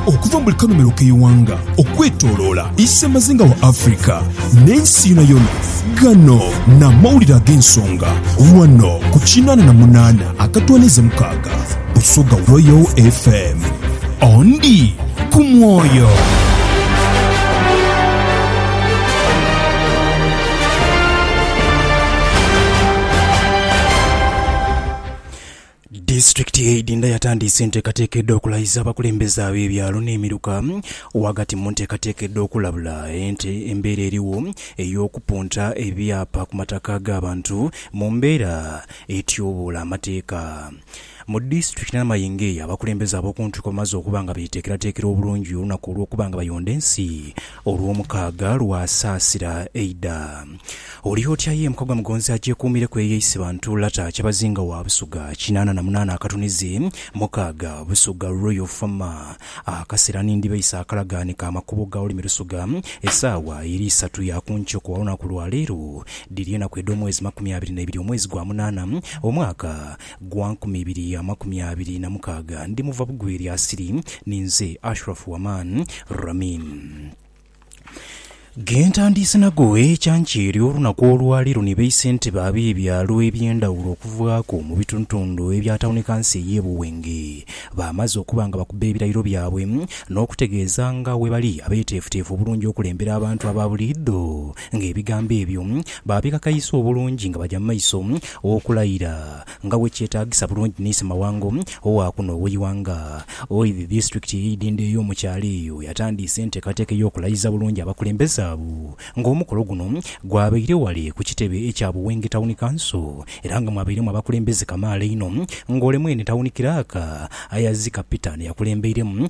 Okuva mu buli kanhumilo k'eighanga okwetoloola isemazinga wa Africa n'ensi yonayona, ghano n'amawulire ag'ensonga ghano ku kinaana na munaana akatwaniiza mukaaga Busoga Royal FM. Ondi ku mwoyo. Disitulikiti y'e Idinda yatandiise enteekateeka edh'okulayiza abakulembeze ab'ebyalo n'emiruka ghagati mu nteekateeka edh'okulabula ente embeera erigho ey'okupunta ebyapa ku mataka g'abantu mu mbeera etyoboola amateeka mu disitulikiti Namayingeeya. Abakulembeze ab'okuntiko bamaze okuba nga beteekerateekera obulungi olunaku olw'okuba nga bayonda ensi. Olw'omukaaga lwa saasira eidha. Oli otya ye mukagwa mugonzi agyekuumireku eyo eisiba ntu lata kyabazinga wa Busuga kinaana na munaana akatunizi mukaaga Busuga Royal Fama Akasera ni ndibaisa akalagaane ka makubo ga Olimi Lusuga Esaawa eri isatu ya ku nkyo ku olunaku lwa leero Dhiri enaku edh'omwezi makumi abiri na ibiri omwezi gwa munaana omwaka Gwa nkumi ibiri amakumi abiri na mukaaga, ndimuva bugwi eri Asiri. Ninze Ashurafu Waman Ramim. Ghe ntandiise nagho ecanca eryo olunaku olwa leero ni beise nti baabe ebyalo eby'endhawulo okuvaaku mu bitundutundu ebya tawuni kanso ey'e Buwenge. Baamaze okuba nga bakubba ebirayiro byabwe n'okutegeeza nga bwe bali abeeteefuteefu obulungi okulembera abantu aba buliidho ng'ebigambo ebyo baabikakaisa obulungi nga baja mu maiso okulayira nga bwe kyetaagisa bulungi ni Ssemawanga owa kuno ow'eighanga. Oi the District ey'eidhindho ey'omu kyalo eyo yatandiisa enteekateeka ey'okulayiza bulungi abakulembeze abo ng'omukolo guno gwabaire ghale ku kitebe ekya Buwenge Town Council era nga mwabairemu abakulembeze kamaala einho ng'ole mwene tawuni kiraaka Ayazika Peter ni yakulembeiremu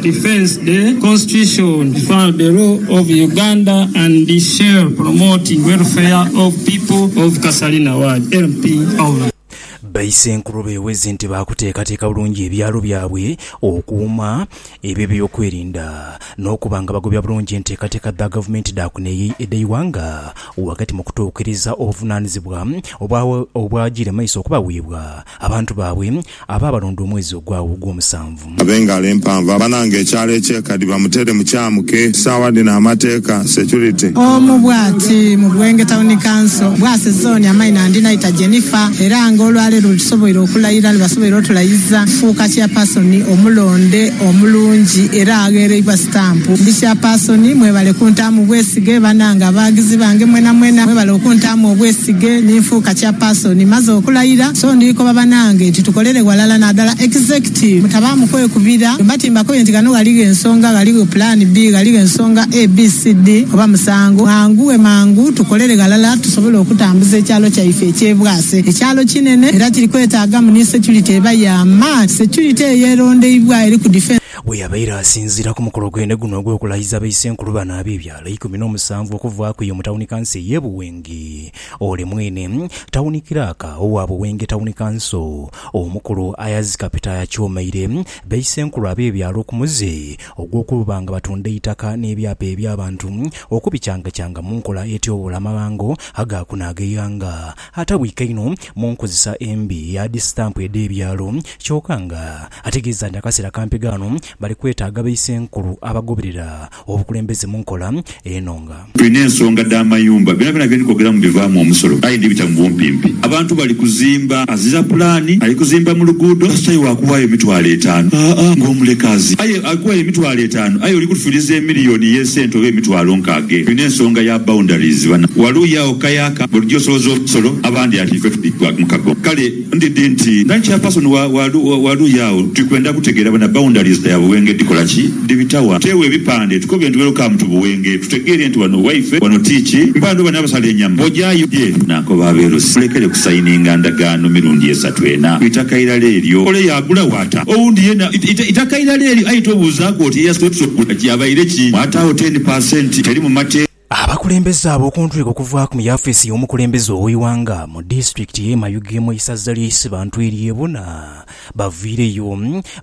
Defence the constitution, defend the rule of Uganda and shall promote welfare of people of Kasalina ward LPO. Baisenkulu beweze nti baakuteekateeka bulungi ebyalo byabwe, okuuma ebye byokwerinda n'okuba nga bagobya bulungi enteekateeka dha gavumenti dha kuno edh'eighanga ghagati mu kutuukiriza obuvunaanyizibwa obwajiire maiso okubaweebwa Abantu baabwe abo abalonda omwezi ogwagho ogw'omusanvu. Ab'engalo empanvu abananga ekyalo eky'ekadi bamutere mu kyamuke sawa dhino amateeka, security. Omu bwati mu Bwenge Tawuni Kanso, Bwaise Zooni amaino andi naita Jennifer era nga olwaleero lwetusoboire okulayira lwebasoboire otulayiza kufuuka Chairpersoni omulonde omulungi era aghereibwa sitampu. Ndi Chairpersoni mwebale kuntaamu bwesige banange abaagizi bange mwenamwena mwebale okuntaamu obwesige ninfuuka Person maze okulayira so ndikoba banange nti tukolere ghalala nadala executive mutabaamu kwekubira bwemba timbakoye nti ghano ghaligho ensonga ghaligho plan bii ghaligho ensonga ABCD oba musango mwanguwe mangu tukolere ghalala tusobole okutambuza ekyalo kyaife ekye Bwaise ekyalo kinene era kiri kwetaagamu ni security eba ya maani security eyo erondeibwa eri ku defence Bweyabaire asinziira ku mukolo gwene guno ogw'okulayiza baisenkulu bano ab'ebyalo eikumi n'omusanvu okuvaaku eyo mu tawuni kanso ey'e Buwenge, Ole mwene tawuni kiraaka owa Buwenge Tawuni Kanso, omukulu Ayaz Kapita yakyomeire baisenkulu ab'ebyalo ku muze ogw'okuba nga batunda eitaka n'ebyapa eby'abantu okubicangacanga mu nkola etyoboola amabango agaakuna ag'eighanga atabwika inho mu nkozesa embi eya dhisitampu edh'ebyalo kyoka nga ategeeza nti akaseera kampi ghano bali kwetaaga baisenkulu abagoberera Obukulembeze mu nkola eno nga. Tulina ensonga dha mayumba byonabyona bye ndikogeramu bivaamu omusolo aye ndibita mu bumpimpi. Abantu bali kuzimba azira pulaani, ali kuzimba mu luguudo kasita ye waakuwaayo emitwalo etaanu haa ng'omuleka azi aye ali kuwaayo emitwalo etaanu aye oli kutufiriza emiliyoni y'esente oba emitwalo nkaaga eno. Tulina ensonga ya boundaries bana. Waluuyi agho ku kayaaka bwe tugya osoloza omusolo abandi ati ife tuli mu kago kale. Ndidhi nti nga chairperson wa wa luuyi agho tuli kwenda kutegeera bona boundaries dha Buwenge dhikola ki, dhibita wa? Tutewo ebipande tukobe nti welcome to Buwenge tutegeere nti wano waife, wano ti ki mpande oba n'abasala enyama ojayo gye. Naakoba Abeerusi mulekere kusayininga ndagaano mirundi esatu ena ku itaka irala eryo. Ole yaagula waata owundi yeena itaka irala eryo aye tobuuzaaku oti eyasooka okugula ki abaire ki? Mwataawo ten per cent teri mu mateeka. Abakulembeze abo okuntwiko okuvaaku mu yafiisi y'omukulembeze ow'eighanga mu disitulikiti y'e Mayuge mu isaza ly'e Isibantu ery'e Buna baviireyo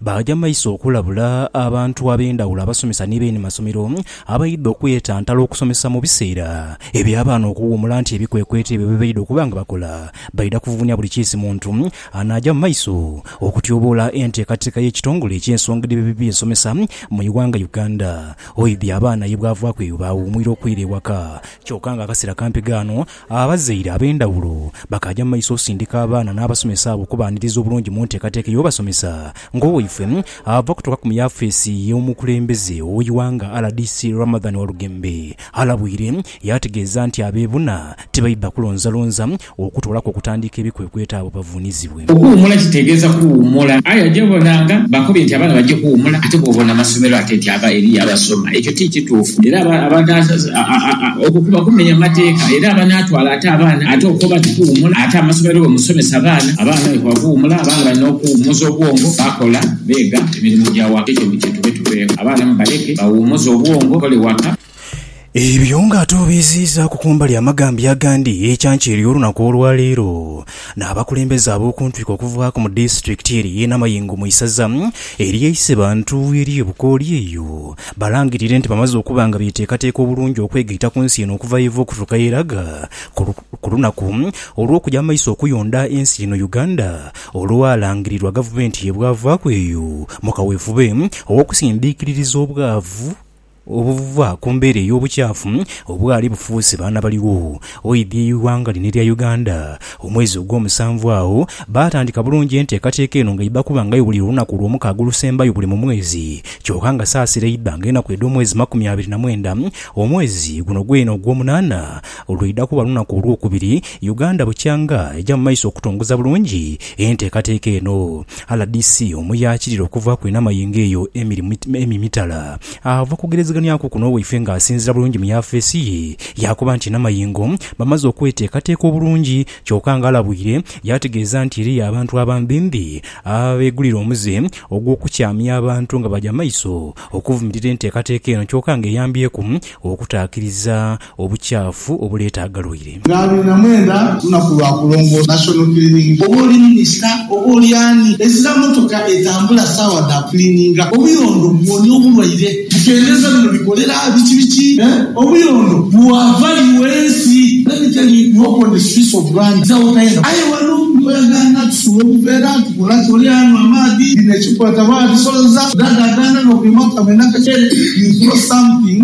baaja mu maiso okulabula abantu ab'endhawulo abasomesa ni beeni masomero abaidha okwetantala okusomesa mu biseera eby'abaana okuwuumula nti ebikwekweto ebyo bye baidha okuba nga bakola baidha kuvuvunia buli kiisi muntu anaaja mu maiso okutyoboola enteekateeka y'ekitongole eky'ensonga edh'eby'ensomesa mu ighanga Uganda. Oidhi abaana ye bwavaaku eyo baawuumwira okwira ewaka. Kyoka nga akaseera kampi ghano, abazaire ab'endhawulo bakaaja mu maiso osindika abaana n'abasomesa abo okubaaniriza obulungi mu nteekateeka ey'obasomesa ng'owaifwe ava kutuukaku mu yafeesi y'omukulembeze ow'eighanga rdc Ramadhan Walugembe alabwire yaategeeza nti abeebuna tibaidha kulonzalonza Okutoolaku okutandiika ebikwekweto abo bavuunizibwe. Okuwumula kitegeeza kuwumula. Aye oja obona nga bakobye nti abaana baja okuwumula ate bwobona amasomero ate nti eriyo abasoma. Ekyo ti kituufu era okwo kuba kumenya mateeka era abanaatwala ate abaana ate okoba nti kuwumula ate amasomero bwe musomesa abaana, abaana bwe kuba kuwumula abaana balina okuwumuza obwongo bakola, beega emirimo gya waka. Ekyo mukitube tuveeko. Abaana mubaleke bawumuze obwongo, bakole waka. Ebyo nga ate obiiziizaaku ku mbali amagambya agandi, ekyankyeri olunaku olwaleero n'abakulembeze ab'okuntwiko okuvaaku mu disitulikiti eri y'e Namayingo mu isaza erye Isebantu erye Bukooli eyo balangirire nti bamaze okuba nga beteekateeka obulungi okwegaita ku nsi eno okuva yeeva okutuuka yeraga ku lunaku olw'okuja mu maiso okuyonda ensi eno Uganda olwalangirirwa gavumenti ye bwavaaku eyo mu kaweefube ow'okusindiikiririza obwavu obuva ku mbeera ey'obukyafu obwali bufuuse baana baligho. Oidhi eighanga lino erya Uganda, omwezi ogwomusanvu agho baatandika bulungi enteekateeka eno nga idha kuba nga ebulira olunaku lwomukaaga olusembayo buli mu mwezi kyoka nga saasira idha nga enaku edh'omwezi makumi abiri na mwenda omwezi guno gweena ogwomunaana Lwidha kuba lunaku olwokubiri Uganda bukyanga eja mu maiso okutongoza bulungi enteekateeka eno. Rdc omu yaakirira okuvaaku enhama ye ng'eyo Emmy Mitala ava kugerezeganyaku kuno waife ng'asinziira bulungi mu yafeesi ye yaakoba nti enhama ye ngo bamaze okweteekateeka obulungi kyoka ng'alabwire yaategeeza nti eriyo abantu abambimbi abeegulira omuze ogw'okukyamya abantu nga baja maiso okuvumirira enteekateeka eno kyoka ng'eyambyeku okutaakiriza obukyafu obuleeta agalwaire. Nga abiri na mwenda lunaku lwa kulongoosa, National Cleaning. Oba oli minisita oba oli ani, ezira mmotoka etambula saawa dha kuliininga obuyondo bwonia obulwaire. Bikendeza bino bikolera biki biki? Obuyondo buwava li wensi? Let me tell you, hope on the streets of Rwanda is our kind of. Aye waliwo buli lw'oyagaana tusula obuveera, tukola ki, oli anywa amaadhi, bino ekikwata bwabisoloza, dad agaana n'okwima kamwenda kakyere, you throw something,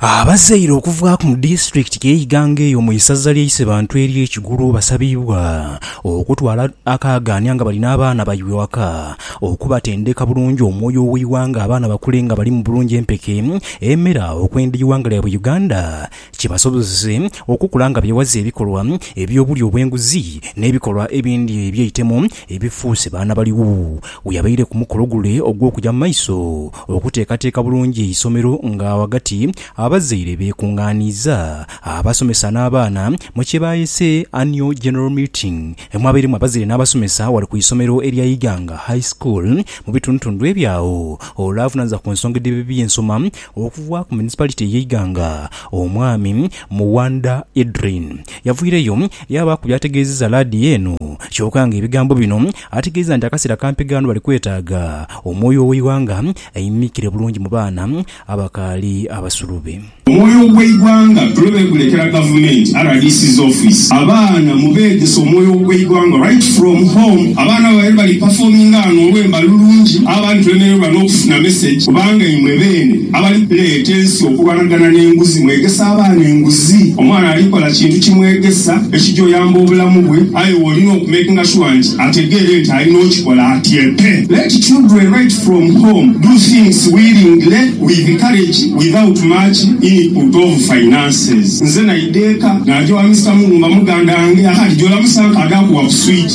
Abazaire okuvaaku mu disitulikiti ye Iganga eyo mu isaza lye Isebantu erye Kigulu basabiibwa okutwala akaagaania nga bali n'abaana baibwe waka okubatendeka bulungi omwoyo oweighanga abaana bakule nga balimu bulungi empeke emera okwenda eighanga lyaibwe Uganda kibasobozese okukula nga bewaze ebikolwa ebyobulya obwenguzi n'ebikolwa ebindi ebyeitemu ebifuuse baana baligho. Weyabaire ku mukolo gule ogwokuja mu maiso Okuteekateeka bulungi eisomero nga ghagati abazaire beekungaaniiza, abasomesa n'abaana mu kye baayese Annual General Meeting emwabairemu abazaire n'abasomesa ghale ku isomero erya Iganga High School mu bitundutundu ebyagho. Ole avunaanyizibwa ku nsonga edh'ebyensoma okuva ku Municipality y'e Iganga Omwami Muwanda Edrine yavaireyo yaabaaku by'ategeezezza laadiyo eno kyoka ng'ebigambo bino Ategeeza nti akasera kampi gano bali kwetaaga omwoyo ow'eighanga aimikire bulungi mu baana abakaali abasulubi. Omwoyo ogw'eighanga tuli begulekera gavumenti, rdc's office, abaana mubeegese omwoyo ogw'eighanga right from home. Abaana babaire bali performinga ghano olwemba lulungi abandi tulemererwa n'okufuna message kubanga imwe beene abali kuleeta ensi okulwanagana n'enguzi mwegese abaana enguzi. Omwana ali kola kintu kimwegesa ekija oyamba obulamu bwe. Aye wolina oku makinga sure nti ategeere nti alina okikola atyepe. Let children write from home, do things willingly, with courage, without much input of finances. Nze naidha eka naja owa Mister Muwumba muganda wange ahari jola musanka ade akuwa ku switch.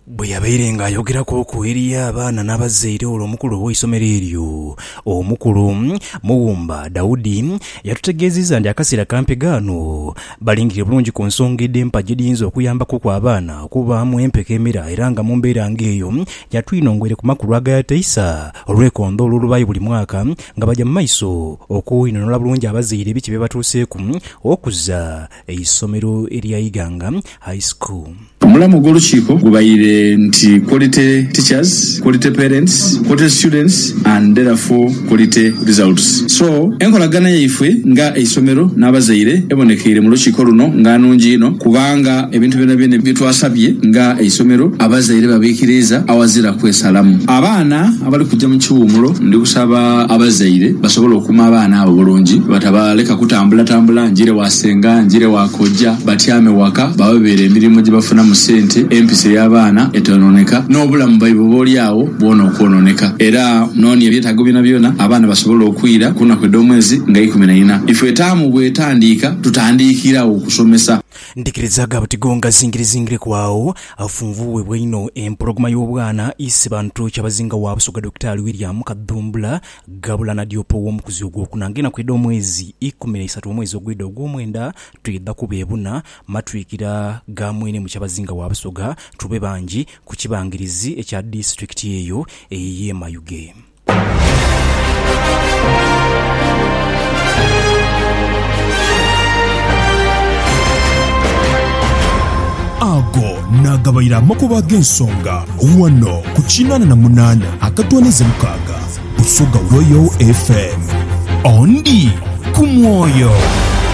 Bwe yabaire ng'ayogeraku oku eri abaana n'abazaire olwo omukulu ow'eisomero eryo, Omukulu Muwumba Daudi yatutegeezizza nti akaseera kampi ghano Balingirire bulungi ku nsonga edh'empa edhiyinza okuyambaku ku abaana okubaamu empeke emera era nga mu mbeera ng'eyo ya twino ngwire ku makulu agayataisa olwekondho olw'olubaayo buli mwaka nga baja mu maiso okweinhonhola bulungi abazaire ebiki bye batuuseeku okuza eisomero erya Iganga High School. Omulamwa ogw'olukiiko gubaire nti Quality Teachers, Quality Parents, Quality Students and Therefore Quality Results. So, enkolagana yaifwe nga eisomero n'abazaire ebonekeire mu lukiiko luno nga nnungi inho kubanga ebintu byonabyona bye twasabye nga eisomero abazaire babiikiriiza awazira kwesalamu. Abaana abali kuja mu kiwumulo ndi kusaba abazaire basobole okuuma abaana abo bulungi batabaleka kutambulatambula ngire wa. Senga njire wa kojja batyame waka babe beere emirimu gye bafunamu sente, empisa ey'abaana etoononeka, n'obulamu bwaibwe ob'olyagho bwona okwononeka. Era nonia ebyetaago byonabyona abaana basobola okwira ku naku edh'omwezi nga ikumi na ina. Ifwe taamu bw'etandiika tutandiikiragho kusomesa. Ndhikirizaga buti gongazingirezingireku agho afunvubwebwa inho empologoma y'obwana ise bantu kyabazinga wa Busoga Dokitaali William Kadhumbula Ghabula na Dyopa ow'omukuzi ogwokuna ng'enaku edh'omwezi ikumi na isatu omwezi ogwidha ogw'omwenda, twidha kubeebuna matwikira ga mwene mu kyabazinga wa Busoga, tube bangi ku kibangirizi ekya disitulikiti eyo ey'e Mayuge. Ago naagabaire amakubo ag'ensonga ghano ku kinaana na munaana akatooneza mukaaga. Busoga Royal FM. Ondi ku mwoyo.